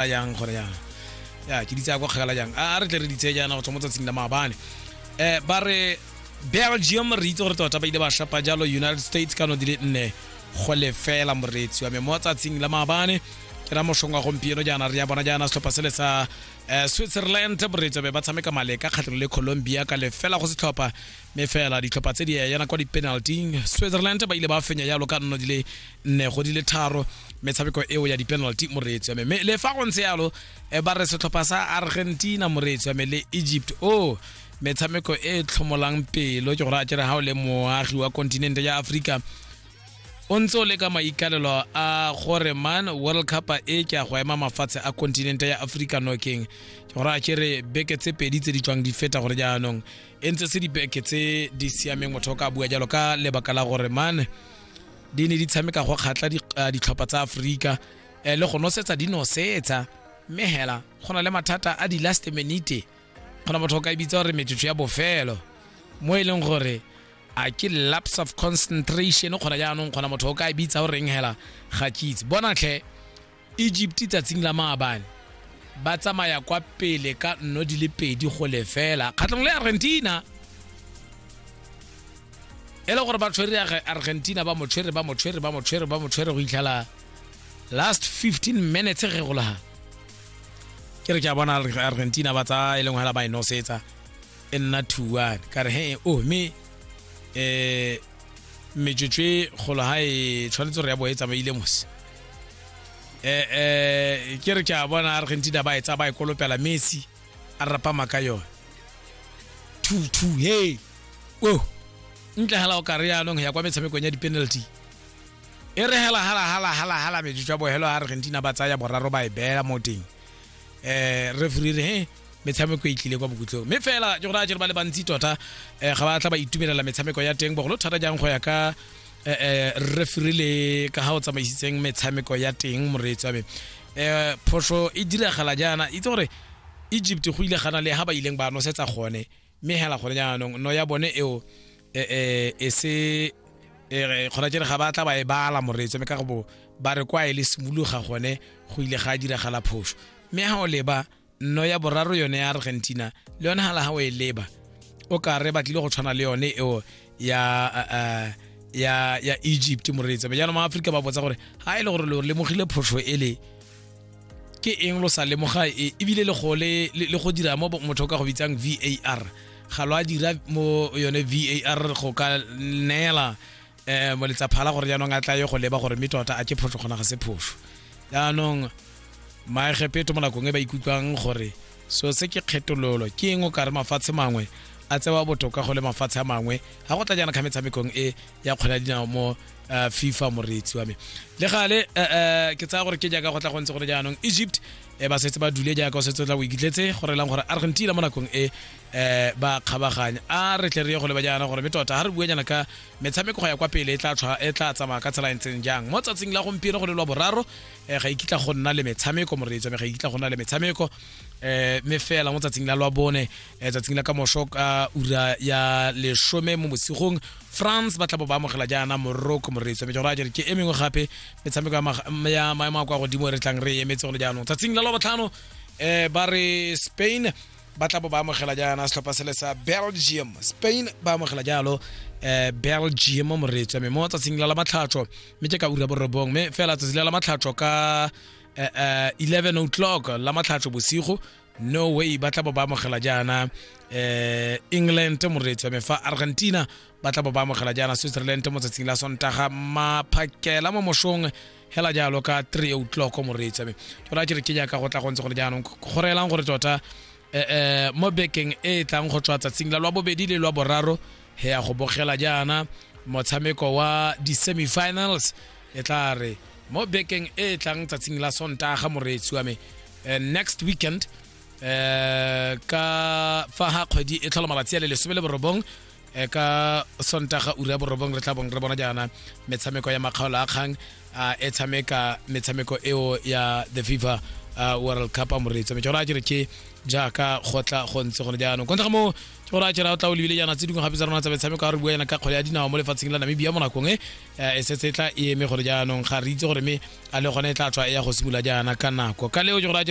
a yang gone yana ya ke di tsaya kwa kgakala jang a re tle re di tseye jaana go tswa mo tsatsing la maabane um ba re belgium re itse gore tota ba ile ba shapa jalo united states ka no di le nne go lefela moreetsi wa me mo tsatsing la maabane ke ra moshong wa gompieno jaana re ya bona jaana setlhopha se le sa um switzerland moreetsi wa me ba tshameka maleka kgatlhelo le colombia ka lefela go setlhopha mme fela ditlhopha tse di yana kwa di-penalty switzerland ba ile ba fenya jalo ka nno di le nne go di le tharo metshameko eo ya di-penalty moreetsi wa me mme le fa go ntse yalo eh, ba re setlhopha sa argentina moreetsi wa me le egypt o oh, metshameko e tlhomolang pelo ke gore a kere ga o le moagi wa kontinente ya aforika o ntse o le ka maikalelo a gore man world cup e ke a go ema mafatshe a kontinente ya aforika nokeng ke gore a kere beke tse pedi tse di tswang di feta gore jaanong e ntse se dibeke tse di siameng motho o ka bua jalo ka lebaka la gore man di ne di tshameka go kgatla ditlhopha tsa aforika um le go nosetsa di nosetsa mme hela go na le mathata a di-last minute kgona motho o ka e bitsa gore metsotso ya bofelo mo e leng gore a ke lapse of concentration kgona jaanong kgona motho o ka e bitsa goreng hela ga kitse bonatlhe Egypt tsatsing la maabane ba tsamaya kwa pele ka nno di le pedi go lefela kgatlhong le argentina e le gore ba tshwere argentina ba motshwere ba motshwere ba motshwere ba motshwere go itlhela last 15 minutes ge go laga ke re ke a bona argentina ba tsaya e leng hela ba e nosetsa e nna thuane ka re he o oh, mme um metsotso e golo ga e tshwanetse gore ya bo e tsamaile mose eh eh ke re ke a bona argentina ba e tsa ba e kolopela messi a rapama ka yone two two hey o ntle hela o ka re yaanong ya kwa metshamekong ya di-penalty e re hela hala hala hala hala metsotso ya bohelo argentina ba tsaya boraro ba e beela mo teng um refree re he metshameko e tlile kwa bokutlong mme fela ke gore a jere ba le bantsi tota um ga ba tla ba itumelela metshameko ya teng bogolo thata jang go ya ka um refere le ka ga o tsamaisitseng metshameko ya teng moreetsi wa me um phoso e diragala jaana itse gore egypt go ile gana le ga ba ileng ba nosetsa gone mme hela gone jaanong no ya bone eo e se kgona jere ga ba tla ba e bala moreetsi mme ka go bo ba re kwa e le simologa gone go ile ga diragala phoso mme ga o leba nno ya boraro yone ya argentina le yone hala ga o e leba o ka re batlile go tshwana le yone eo ya uh, ya ya egypt moreetsa jaanong maaforika ba botsa gore ga e le gore lo lemogile phoso ele ke eng lo sa lemoga e ebile le go le le go dira mo motho ka go bitsang VAR ga lo a dira mo yone VAR go ka neela eh moletsapha la gore jaanong a tla ye go leba gore mme tota a ke phoso gona ga se phoso jaanong maegepeto mo nakong e ba ikutlwang gore so se ke kgetololo ke eng o kare mafatshe mangwe a tsewa botoka go le mafatshe a mangwe ga go tla jaana ka metshamekong e ya kgwela dinao mo eh, fifa moreetsi wa me le gale eh, eh, ke tsaya gore ke jaaka go tla go ntse gore jaanong egypt ba setse ba dule jaaka o setse o tla o ikitletse gore lang gore argentina mo nakong e eh ba kgabaganya a re tle re ye go leba jaana gore metota ga re bue nyana ka metshameko go ya kwa pele e tla e tsamaya ka tsela e ntseng jang mo tsatsing la gompieno go le lwa boraro um ga ikitla go nna le metshameko moreetso me ga ikitla go nna le metshameko um me fela mo tsatsing la lwa bone um tsatsing la ka moso ka ura ya lesome mo bosigong france ba tla bo ba amogela jaana morocco moreetso me jalo a jere ke e mengwe gape metshameko ya maemo a kwa godimo re tlang re emetse go le jaanong tsatsing la lwa botlhano um ba re spain ba tla bo ba amogela jaana setlhopha sele sa belgium spain ba amogela jalo um belgium moretswa mme mo tsatsing la la matlhatsho mme ke ka ura borobong mme fela tsatsi la la matlhatsho ka um eleven o'clock la matlhatsho bosigo no way ba tla bo ba amogela jaana um england moretswa mme fa argentina ba tla bo ba amogela jaana switzerland mo tsatsing la sontaga maphakela mo mosong hela jalo ka three o'clock mo reetsa me jalo a kere ke jaaka go tla go ntse gore jaanong go reelang gore tota um mo bekeng e e tlang go tswa tsatsing la lwa bobedi le lwa boraro he ya go bogela jaana motshameko wa di-semifinals e tla re mo bekeng e e tlang tsatsing la sontaga moreetsi wa me uh, next weekend uh, ka fa ga kgwedi e tlhola malatsi a le lesome le borobong e ka sontaga ura ya borobong re tla bong re bona jaana metshameko ya makgaolo a kgang e tshameka metshameko eo ya the fifa world cup a moretso mme tsona a jere ke jaaka go tla go ntse gone jaanong kontle ga moo ke gore a jera o tla o lebile jaana tse dingwe gape tsa rona tsa metshameko a re bua yana ka kgwele ya dinao mo lefatsheng la namibia mo nakong e e setse e tla e eme gore jaanong ga re itse gore mme a le gone e tla tswa e ya go simolola jaana ka nako ka leo ke gore a